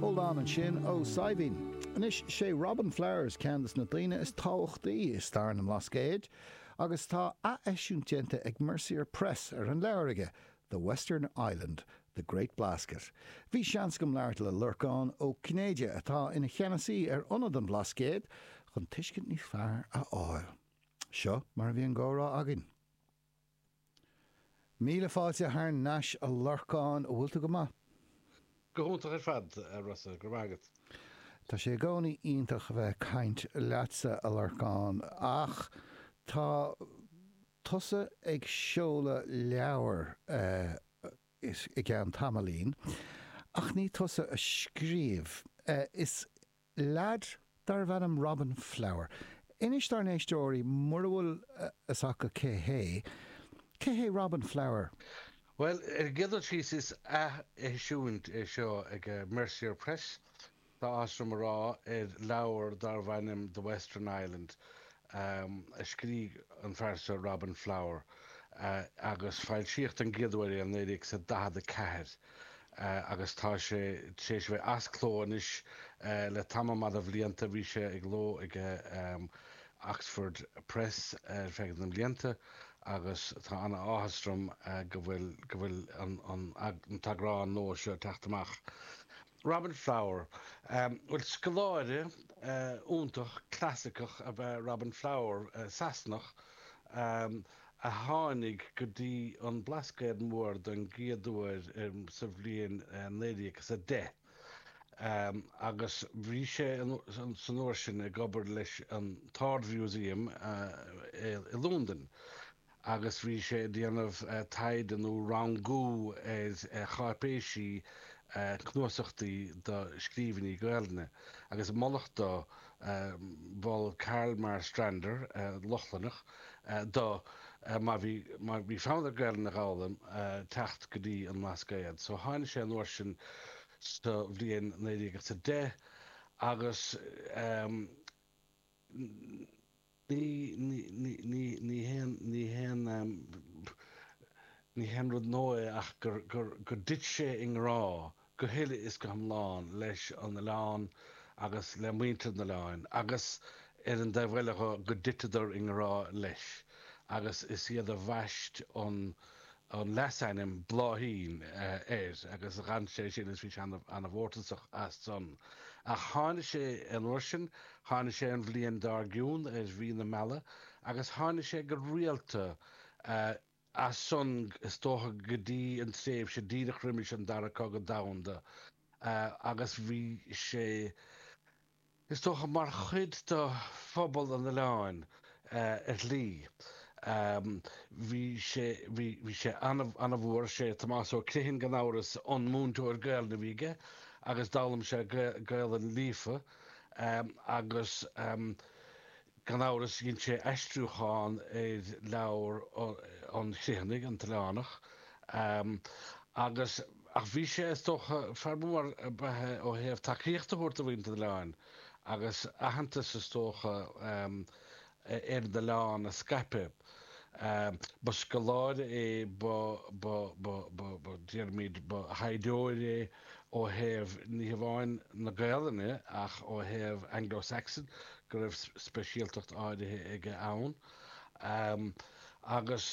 Hold on ansin a Shaidhbhín. Anois, sé Robin Flowers ceann de na daoine is tábhachtaí i stair na mBlascaod agus tá ath-eisiúint déanta ag Mercier Press ar an leabhar aige, The Western Island, The Great Blasket. Bhí seans agam labhairt le Lorcán Ó Cinnéide, atá ina cheannasaí ar Ionad an Bhlascaoid, chun tuiscint níos fearr a fháil. Seo mar a bhí an gcomhrá againn. Míle fáilte thar nais a Lorcáin, bhfuil tú go maith? Go hiontach ar fad, a Rossa, go raibh maith agat. Tá sé i gcónaí iontach a bheith ag caint leatsa, a Lorcáin, ach tá tusa ag seoladh leabhair i gceann tamaillín, ach ní tusa a scríobh, is leaid darbh ainm Robin Flower. Inis dár n-éisteoirí, mura bhfuil fhios acu cé hé, cé hé Robin Flower? Bhuel, ar an gcéad dul síos, is ath-eisiúint é seo ag Mercier Press, tá áthas orm a rá, ar leabhar darbh ainm The Western Island, a scrígh an fear seo, Robin Flower, agus foilsíodh don gcéad uair é i 1944. agus tá sé tar éis a bheith as cló anois le tamall maith de bhlianta. Bhí sé i gcló ag Oxford Press ar feadh na mblianta agus tá an-áthas orm go bhfuil go bhfuil an t-eagrán nua seo ag teacht amach. Robin Flower, bhuel, scoláire iontach clasaiceach ab ea Robin Flower, Sasanach, a tháinig go dtí an Blascaod Mór don gcéad uair sa bhliain 1910 agus bhí sé san uair sin ag obair leis an tArd-Mhúsaem i Londain agus bhí sé ag déanamh taighde nó rangú ar cháipéisí cnuasachtaí do scríbhinní Gaelainne agus moladh dó, mhol Carl Marstrander, Lochlannach, do mar bhí mar bhí fonn air Gaelainn a dh'fhoghlaim teacht go dtí an mBlascaod so tháini' sé an uair sin sa bhliain naoi déag is a deich agus ní ní ní ní ní haon ní haon ní haon rud nua é ach gur gur gur dtit sé i ngrá go huile is go hiomlán leis an oileán agus le muintir an oileáin agus ar an taobh eile dho go dtiteadar i ngrá leis agus is iad a bhaist an an leasainm Bláithín air agus dh'fhan sé sin agus bhí sé ana-mhórtasach as san. Ach tháini' sé an uair sin, tháini' sé an bhliain dár gcionn ar mhí na meala agus tháini' sé go rialta. As san, is dócha, go dtí an tréimhse díreach roimis an Dara Cogadh Domhanda, agus bhí sé, is dócha, mar chuid de phobal an oileáin ar shlí. Bhí sé, bhí sé ana-mhór, 'sé Tomás Ó Criomhthain, gan amhras, an múinteoir Gaelainne a bhí aige, agus d'fhoghlaim sé Gaelainn líofa, agus Gan amhras dhein sé aistriúchán ar leabhar an Chriomhthanaigh, An tOileánach, agus, ach bhí sé, is dócha, fíormhaith ó thaobh tacaíocht a thabhairt do mhuintir an oileáin agus aitheantas, is dócha, ar an oileán a scaipeadh. Ba scoláire é, ba, déarfaimid, ba thaighdeoir é. ó thaobh ní hamháin na Gaelainne, ach ó thaobh Anglo-Saxon go raibh speisialtacht áirithe aige ann agus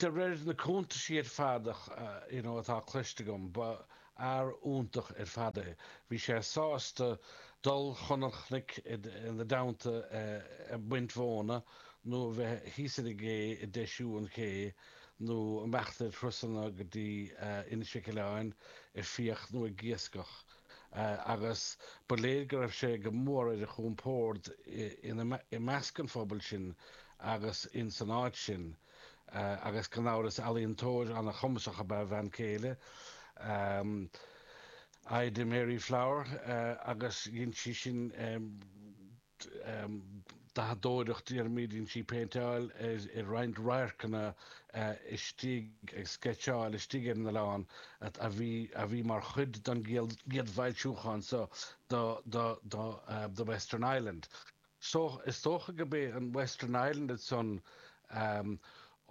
de réir na cuntaisí ar fad atá cloiste agam ba fhear iontach ar fad é. Bhí sé sásta dul chun an chnoic ina dteannta ag baint mhóna nó a bheith thíos ar an gcé ag deisiú an ché, nó imeacht ar thurasanna go dtí Inis Mhic Aoibhleáin ag fiach nó ag iascach, agus ba léir go raibh sé go mór ar a chompord ina i measc an phobail sin agus ins an áit sin, agus gan amhras ealaíontóir an-chumasach ab ea a bhean céile, Ida Mary Flower, agus dhein sí sin. dathadóireacht, déarfaimid, dhein sí, péinteáil, roinnt radharcanna istigh agus sceitseáil istigh ar an oileán a bhí, a bhí mar chuid den gcéad bhfoilsiúchán seo de, de The Western Island. Is dócha gurb é an Western Island san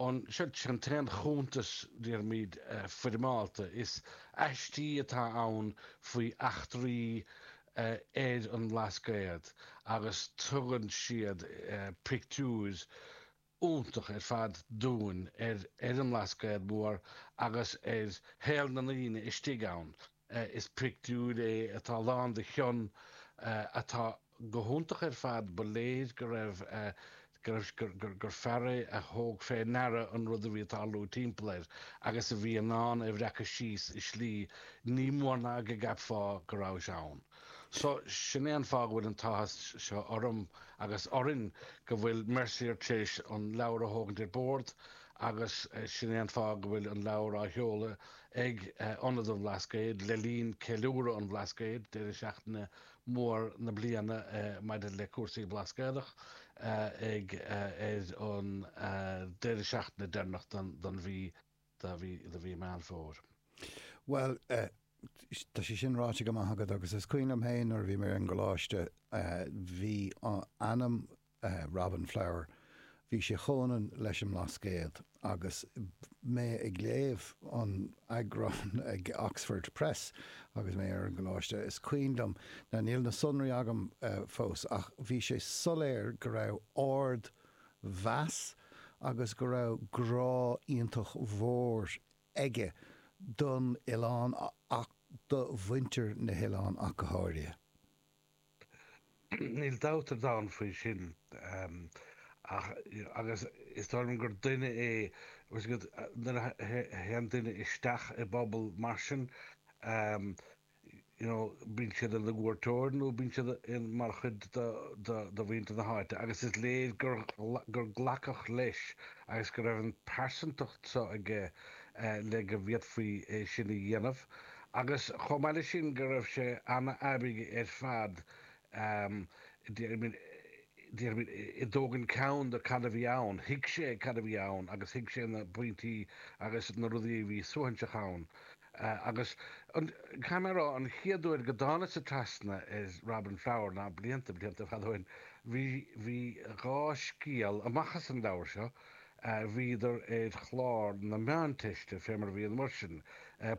ní hé atá ann aon chuntas, déarfaimid, foirmeálta, is aistí atá ann faoi eachtraí ar an mBlascaod agus tugann siad pictiúir iontach ar fad dúinn ar an mBlascaod Mór agus ar shaol na ndaoine istigh ann. Is pictiúr é atá lán de chion atá go hiontach ar fad. Ba léir go raibh gur fear é a thóg fé ndeara an rud a bhí ag tarlú timpeall air agus a bhí in ann é a bhreacadh síos i slí nach mór go gceapfá go rabhais ann. So, sin é an fáth go bhfuil an t-áthas seo orm agus orainn go bhfuil Mercier tar éis an leabhar a thógaint ar bord agus sin é an fáth go bhfuil an leabhar á sheoladh ag Ionad an Bhlascaoid le linn Ceiliúradh an Bhlascaoid, deireadh seachtaine mór na bliana maidir le cúrsaí Blascaodach, ag ar an deireadh seachtaine deireanach den mhí, de mhí Mheán Fómhair. Bhuel, tá sé sin ráite go maith agat agus is cuimhin liom féin nuair a bhí mé ar an gcoláiste, bhí ainm Robin Flower, bhí sé comhionann leis an mBlascaod. Agus mé ag léamh an eagráin ag Oxford Press agus mé ar an gcoláiste, is cuimhin liom, now níl na sonraí agam fós, ach bhí sé soiléir go raibh ardmheas agus go raibh grá iontach mhór aige don oileán ach do mhuintir na hoileáin ach go háirithe. Níl dabht ar domhan faoi sin agus is dóigh liom gur duine é nuair a théann duine isteach i bpobal mar sin bíonn sé ina chuairteoir nó bíonn sé mar chuid de mhuintir na háite agus is léir gur glacadh leis agus go raibh an phearsantacht seo aige le go bhféadfaí é sin a dhéanamh. agus chomh maith leis sin go raibh sé an-aibí ar fad, déarfaimid, i dtógaint ceann do cad a bhí ann, thuig sé cad a bhí ann agus thuig sé na pointí agus na rudaí a bhí suaithinseach ann. Agus caithfidh mé a rá, an chéad uair go dtánag-sa trasna ar Robin Flower, ná blianta, blianta fada ó shin, bhí dhá scéal amach as an leabhar seo a bhíodar ar chlár na Meánteiste, fé mar a bhí an uair sin,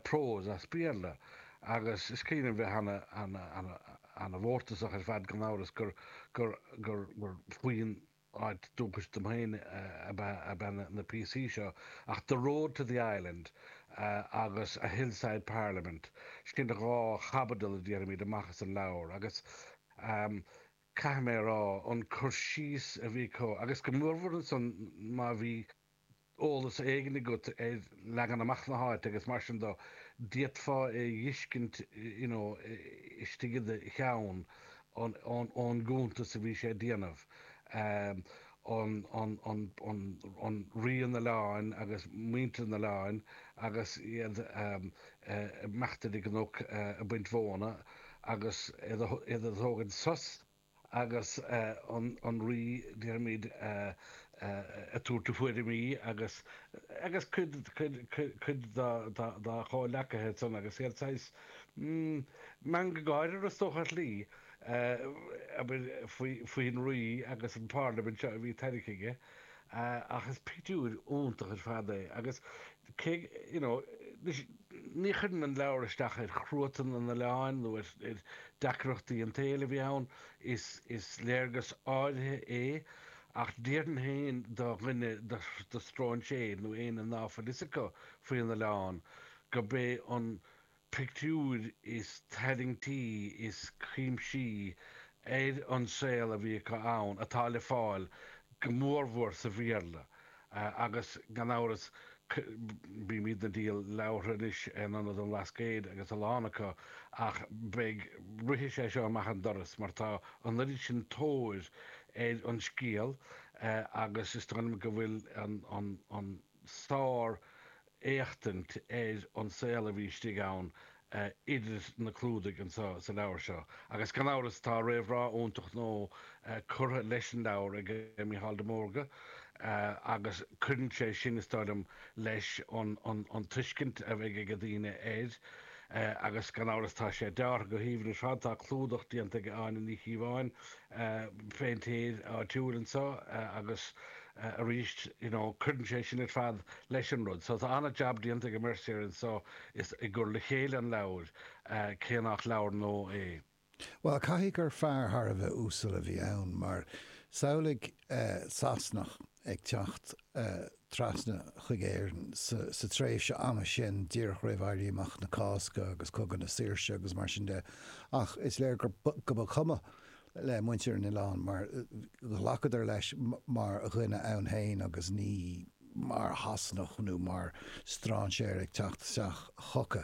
prós as Béarla, agus is cuimhin liom bheith an-mhórtasach ar fad gan amhras gur faoin áit dúchais dom fhéin ab ea na píosaí seo, ach The Road to the Island agus A Hillside Parliament, sin dhá chaibidil a dheineamar amach as an leabhar, agus. Caithfidh mé a rá, an cur síos a bhí acu, agus go mór-mhór ansan má bhí eolas éigin agat ar leagan amach na háite agus mar sin de, d'fhéadfá é a dh'fheiscint, you know, istigh i do cheann ón gcuntas a bhí sé a dhéanamh. Rí an Oileáin agus muintir an Oileáin agus iad imithe ar an gcnoc ag baint mhóna agus iad ag tógaint sos agus an Rí déarfaimid ag tabhairt a thuairimí agus agus cuid cuid dá chomhleacaithe ansan agus iad saghas meangadh gáire is dócha ar shlí. abair, faoi an rí agus an pharlaimint seo a bhí tairgthe aige ach is pictiúir iontach ar fad é agus cé go, you know, anois, ní chuireann an leabhar isteach ar chruatan an oileáin nó ar dheacrachtaí an tsaoil a bhí ann, is léargas áirithe é ach déarfainn féin do dhuine, do stróinséir nó éinne ná fuil a fhios acu faoin oileán, gurb é an. pictiúir is tarraingtí is cuimsí ar an saol a bhí acu ann atá le fáil go mórmhór sa Bhéarla agus gan amhras bímid ag díol leabhartha anois in ionad an Bhlascaoid agus a lán acu ach beidh rithfidh sé seo amach an doras mar tá an oiread sin tóir ar an scéal agus is dóigh liom go bhfuil an sár éachtaint ar an saol a bhí istigh ann idir na clúdaigh anseo sa leabhar seo. Agus gan amhras tá réamhrá iontach nua curtha leis an leabhar ag Micheál de Mórdha agus cuireann sé sin is dóigh liom leis an tuiscint a bheidh ag daoine air agus gan amhras tá sé deartha go haoibhinn ar fad. Tá clúdach déanta ag Áine Ní Chíobháin, péintéir áitiúil anseo agus. arís you know cuireann sé sin ar fad leis an rud so tá an-jab déanta ag an Mercier anseo i gcur le chéile an leabhair cé nach leabhar nua é. Bhuel, caithfidh gur fear thar a bheith uasal a bhí ann mar samhlaigh Sasanach ag teacht trasna chuig Éirinn sa tréimhse ama sin díreach roimh Éirí Amach na Cásca agus Cogadh na Saoirse agus mar sin de ach is léir go mba chuma le muintir an oileáin mar ghlacadar leis mar dhuine ann féin agus ní mar Shasanach nó mar strainséir ag teacht isteach chucu.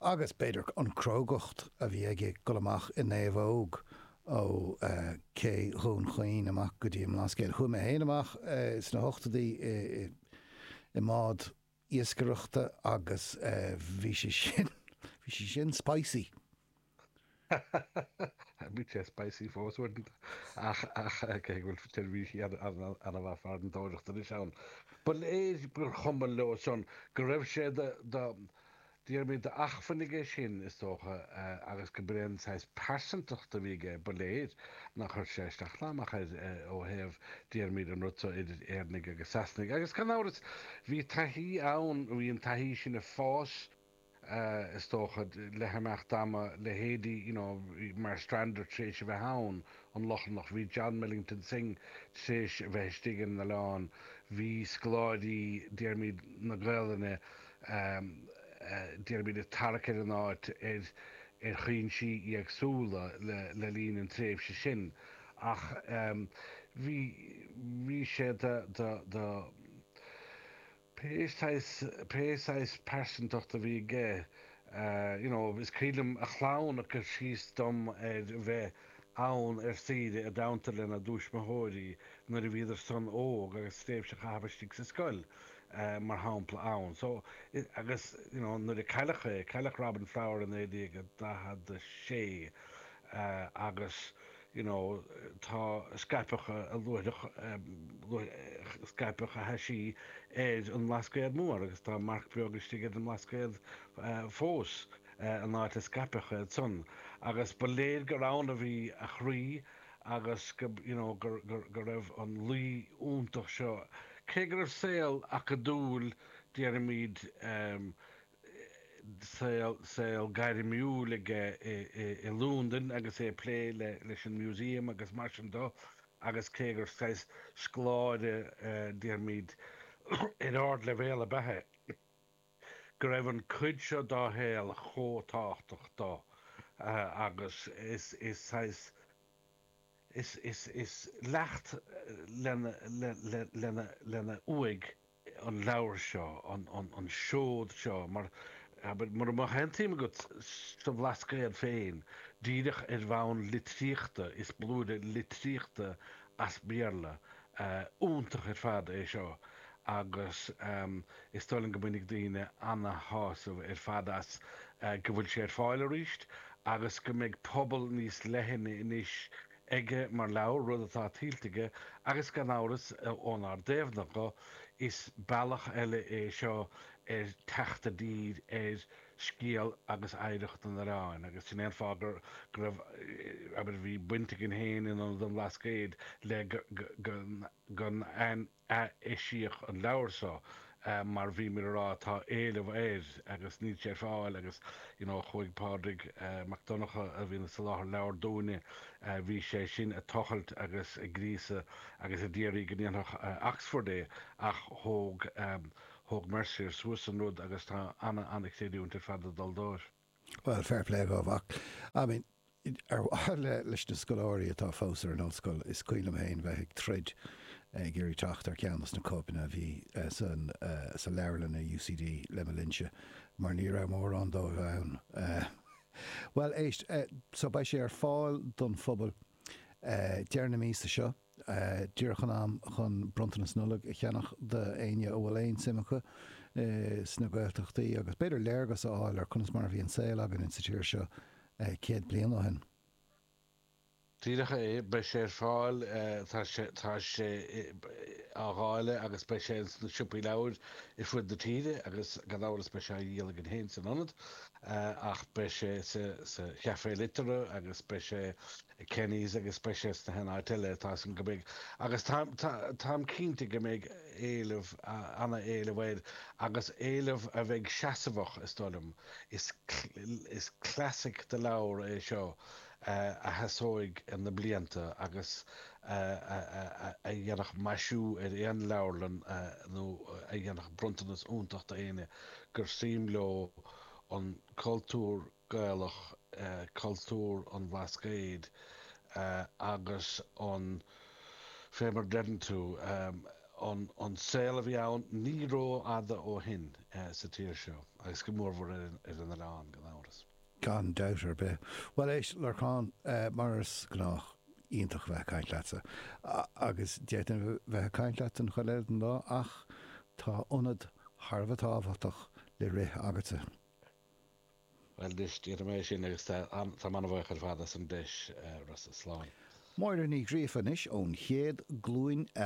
Agus b'fhéidir an crógacht a bhí aige ag dul amach i naomhóg ó ché Dhún Chaoin amach go dtí an mBlascaod. Chuaigh mé féin amach sna hochtaidí i mbád. iascaireachta agus bhí sé sin, bhí sé sin spicy! Bhí sé spicy fós uaireanta ach ach cé go bhfuil seirbhísí an-mhaith farantóireachta anois ann, ba léir gur chuma leo san go raibh sé de Déarfaimid d'acmhainn aige sin, is dócha, agus go b'é an saghas pearsantacht a bhí aige, ba léir nár chuir sé isteach ná amach air ó thaobh déarfaimid an rud so, idir Éireannaigh agus Sasanaigh. Agus, gan amhras, bhí taithí ann, bhí an taithí sin ag fás, is dócha, le himeacht ama, leithéidí, you know, Marstrander tar éis a bheith ann, an Lochlannach, bhí John Millington Synge tar éis a bheith istigh ar an oileán, bhí scoláirí, déarfaimid, na Gaolainne, déarfaimid ag tarrac ar an áit ar chúinsí éagsúla le linn an tréimhse sin ach bhí bhí sé de pé saghas pearsantacht a bhí aige you know is cuimhin liom a chlann ag cur síos dom ar a bheith ann ar saoire i dteannta lena dtuismitheoirí nuair a bhíodar san óg agus tréimhse a chaitheamh istigh sa scoil mar shampla ann. So, agus, you know, nuair a cailleadh é, cailleadh Robin Flower i 1946 agus, you know, scaipeadh a luaithreach, scaipeadh a thaisí ar an mBlascaod Mór agus tá marc beag istigh ar an mBlascaod fós. an áit a scaipeadh iad san agus ba léir gur ann a bhí a chroí agus go, you know, gur, gur, go raibh an luí iontach seo, cé go raibh saol acadúil, déarfaimid, em, saol, saol gairmiúil aige i, i, i Londain agus é ag plé le, leis an Museum agus mar sin do agus cé gur saghas scoláire, eh, déarfaimid, ar ardleibhéal ab ea é. go raibh an chuid seo dá shaol chomh tábhachtach dó agus is saghas leacht lena uaigh an leabhar seo, an seod seo, mura mbeadh aon tsuim agat sa Bhlascaod féin, díreach ar bhonn litríochta, is blúire litríochta as Béarla. Iontach ar fad é seo agus is dóigh liom go mbainfidh daoine ana-shásamh ar fad as, go bhfuil sé ar fáil arís agus go mbeidh pobal níos leithne anois aige mar leabhar, rud atá tuillte aige agus gan amhras, ónár dtaobh de, is bealach eile é seo ar theacht go dtí ar scéal agus oidhreacht an oileáin agus sin é an fáth go raibh, abair, bhí baint againn féin in Ionad an Bhlascaoid le go n-atheiseodh an leabhar so mar bhíomar ag rá tá éileamh air agus níl sé ar fáil agus you know chuaigh Pádraig Mac Donncha a bhíonn ag soláthar leabhar dúinne, bhí sé sin ag tochailt agus ag gríosadh agus ag iarraidh go ndéanfadh Oxford é ach thóg Thóg Mercier suas an rud agus tá ana ana chreidiúint ar fad ag dul dóibh. Bhuel, fair play dhóibh mar I mean ar mhaithe le, leis na scoláirí atá fós ar an ollscoil is cuimhin liom féin bheith ag troid ag iarraidh teacht ar cheann dos na cóipeanna a bhí san, sa leabharlann i UCD le mo linnse mar ní raibh mórán díobh ann. Bhuel éist, so beidh sé ar fáil don phobal deireadh na míosa seo. díreach in am chun bronntanas Nollag a cheannach d'éinne a bhfuil aon suim acu sna Gaeltachtaí agus b'fhéidir léargas a fháil ar conas mar a bhí an saol againn in sa tír seo céad bliain ó shin. Díreach é, beidh sé ar fáil, tá sé á dháileadh agus beidh sé ins na siopaí leabhair ar fud na tíre agus gan amhras beidh sé á dhíol againn féin san Ionad ach beidh sé sa Chafé Liteartha agus beidh sé ag Kenny's agus beidh sé sna háiteanna eile a tá súil go beidh agus tá tá táim cinnte go mbeidh éileamh ana éileamh air agus éileamh a bheidh seasamhach is dóigh liom. Is is classic de leabhar é seo a a sheasóidh na blianta agus a a a a dhéanfadh maisiú ar aon leabharlann nó a dhéanfadh bronntanas iontach do éinne gur suim leo an cultúr Gaelach, cultúr an Bhlascaoid agus an fé mar a deireann tú, an saol a bhí ann ní rófhada ó shin sa tír seo, agus go mórmhór ar an oileán, gan amhras. Gan dabht ar bith. Bhuel, éist, Lorcán, mar is gnách, iontach a bheith ag caint leatsa, agus d'fhéadfainn a bheith ag caint leat an chuid eile den lá, ach tá ionad thar a bheith tábhachtach le rith agatsa. Bhuel anois, déanfaidh mé é sin agus tá mé an-bhuíoch ar fad as an deis, Rossa. Slán. Máire Ní Ghríofa anois ón chéad glúin